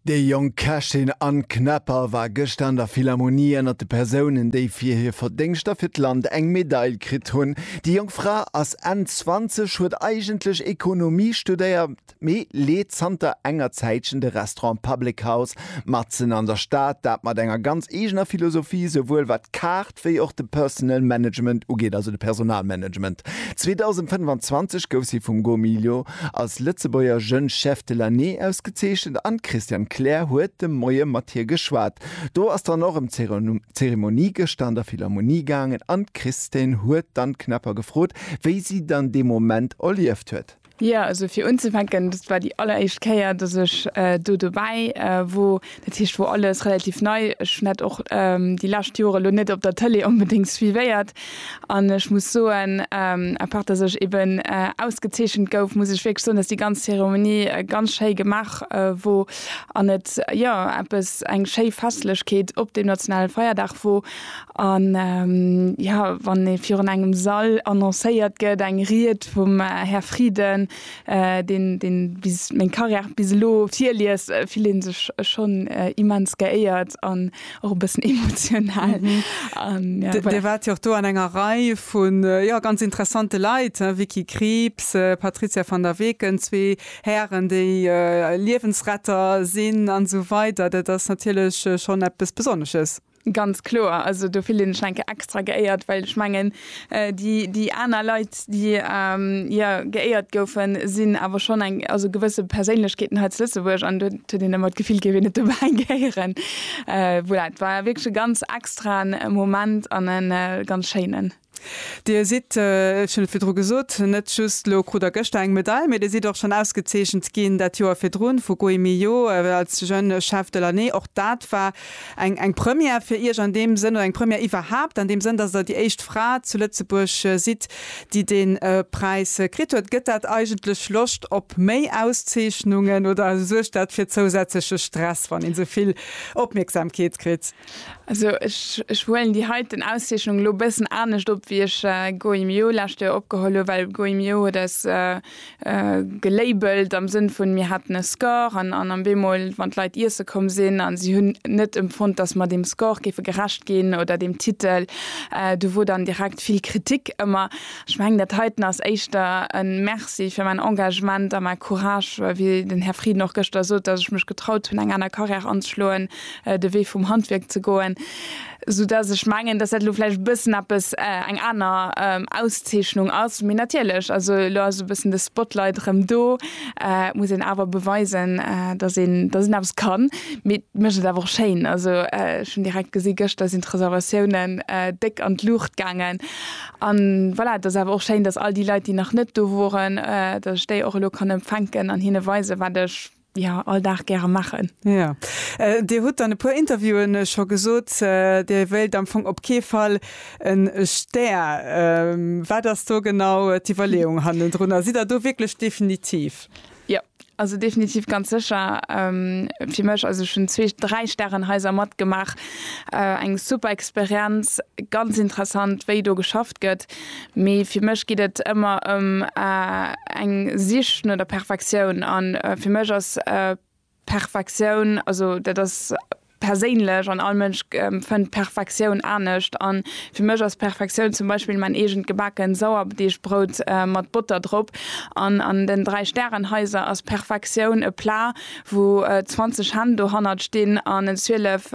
Déi jonk Kächin Anne Knepper war gëschter an der Philharmonie ënnert de Persounen, déi fir hir Verdéngschter fir d'Land eng Medail kritt hunn. Déi jonk Fra ass Enn 20, huet eigentlech Ekonomie studéiert, mee leet zanter enger Zäitchen de Restaurant Public House matzen an der Stad, dat mat enger ganz eegener Philosophie, souwuel wat d'Kaart, wéi och de Personal Management ugeet, also de Personalmanagement. 2025 gouf si vum Go Milio als Lëtzebuerger Jeune Chef de l'année ausgezeechent an d'Christiane Kleer huet de Moie mat hir geschwat. Do ass dann och ëm d'Zeremonie gëschter an der Philharmonie gaangen an d'Christine huet d'Anne Knapper gefrot, wéi si dann dee Moment erlieft huet. Jo, also fir unzefänken, dat war déi alleréischt Kéier, datt ech do dobäi wor. Dat heescht, wor alles relativ nei. Ech hunn dat och déi lescht Jore lo net op der Tëlee onbedéngt suivéiert. An ech muss soen, à part datt ech eben ausgezeechent gouf, muss ech wierklech soen, datt déi ganz Zeremonie ganz schéi gemaach wor an et, jo, eppes, eng schéi Festlechkeet op deem nationale Feierdag wor. A jo, wann ee virun engem Sall annoncéiert gëtt, eng Ried vum Här Frieden, deen deen bis meng Carrière bis elo virliest, fillt ee sech schonn immens geéiert an och e bëssen emotional. Dir waart jo och do an enger Rei vu jo ganz interessante Leit, Vicky Krieps, Patrizia van der Weken, zwee Hären, déi Liewensretter sinn an esou weider. Dat ass natierlech schonn eppes Besonnesches. Ganz kloer, also do fillen ech eng Kéier extra geéiert, well ech mengen, déi, déi aner Leit, déi, jo, geéiert goufen, sinn awer schonn eng, also gewësse Perséinlechkeeten hei zu Lëtzebuerg an do huet een ëmmer d'Gefill, géif een net dobäi gehéieren. Voilà, et war wierklech e ganz extraen Moment an e ganz schéinen. Dir sidd, ech hunn et virdru gesot, net just elo, krut der gëschter eng Medail, mee Dir sidd och schonn ausgezeechent ginn dat Joer virdrun vu Gui Millot als Jeune Chef de l'année. Och dat war eng Première fir Iech an deem Sënn, oder eng Première iwwerhaapt an deem Sënn, dass Der déi éischt Fra zu Lëtzebuerg sidd, déi dee Präis kritt huet. Gëtt dat eigentlech Loscht op méi Auszeechnungen oder suergt dat fir zousätzleche Stress, wann een esou vill Opmierksamkeet kritt? Also ech huelen déi heiten Auszeechnung elo e bëssen anescht op, wéi ech Goemio lescht Joer opgeholl hu, well Goemio huet eis gelabelt am Sënn vun, mir haten e Score an an am Bemol, wann d'Leit iesse komm sinn a si hunn net empfonnt, dass mer deem Score géife gerecht ginn oder deem Titel, do wor dann direkt vill Kritik ëmmer. Ech mengen, dat heiten ass éischter e Merci fir mäin Engagement a mäi Courage, wéi den Här Frieden och gëschter sot, dass ech mech getraut hunn, eng aner Carrière anzeschloen. de Wee vum Handwierk ze goen, sou dass ech mengen, dass dat elo vläicht e bëssen eppes, eng aner Auszeechnung ass. Mee natierlech, also elo ass e bëssen de Spotlight erëm do, et muss een awer beweisen, dass een, dass een eppes kann. Mee et mécht et awer och schéin. Also ech hunn direkt gesi gëschter sinn d'Reservatiounen déck an d'Luucht gaangen. An voilà, et ass awer och schéin, dass all déi Leit, déi nach net do woren, dass ech déi och elo kann empfänken an hinne weisen, wat ech, Jo, all Dag gäre maachen. Jo. Dir hutt an e puer Interviewen scho gesot, Dir wéilt am Fong op kee Fall e Stär. Wat ass do genau d'Iwwerleeung hannendrunner? Sidd Der do wierklech definitiv? Jo, also definitiv ganz sécher. Fir mech, also ech hunn zwee, dräi Stärenhaiser matgemaach, eng super Experienz, ganz interessant wéi do geschafft gëtt. Mee fir mech geet et ëmmer ëm eng Sich no der Perfektioun. A fir mech ass Perfektioun, also dat ass perséinlech an all Mënsch fënnt d'Perfektioun anescht. An fir mech ass Perfektioun zum Beispill mäin eegent gebaken Sauerdeegbrout mat Botter drop. An an den 3 Stärenhaiser ass Perfektioun e Plat, wou 20 Hänn dohannert stinn an en 12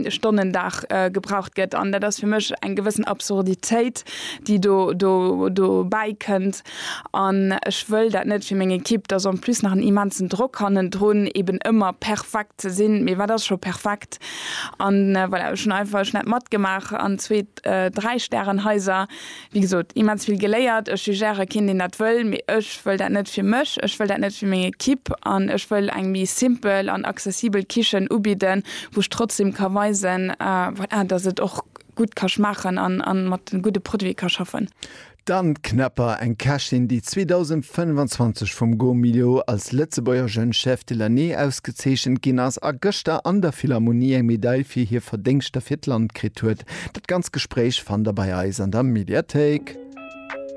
Stonnen Dag gebraucht gëtt. An dat ass fir mech eng gewëssen Absurditéit, déi do dobäi kënnt. An ech wëll dat net fir meng Ekipp, dass en plus nach en immensen Drock hannendrun, eeben ëmmer perfekt ze sinn. Mee wat ass scho perfekt? An voilà, ech hunn einfach ech hunn dat matgemaach an zwee, dräi Stärenhaiser, Wéi gesot, immens vill geléiert. Ech jugéiere keen, deen dat wëll, mee ech wëll dat net fir mech, ech wëll dat net fir meng Ekipp an ech wëll eng méi simpel an accessibel Kichen ubidden, wou ech trotzdem ka weisen, voilà, dass et och gutt ka schmaachen a mat gudde Produite ka schaffen. D'Anne Knapper, eng Kächin, déi 2025 vum Gomio als Lëtzebuerger Jeune Chef de l'année ausgezeechent ginn ass a gëschter an der Philharmonie eng Medail fir hir Verdéngschter fir d'Land kritt huet, Dat ganzt Gespréich fannt der bei eis an der Mediathéik.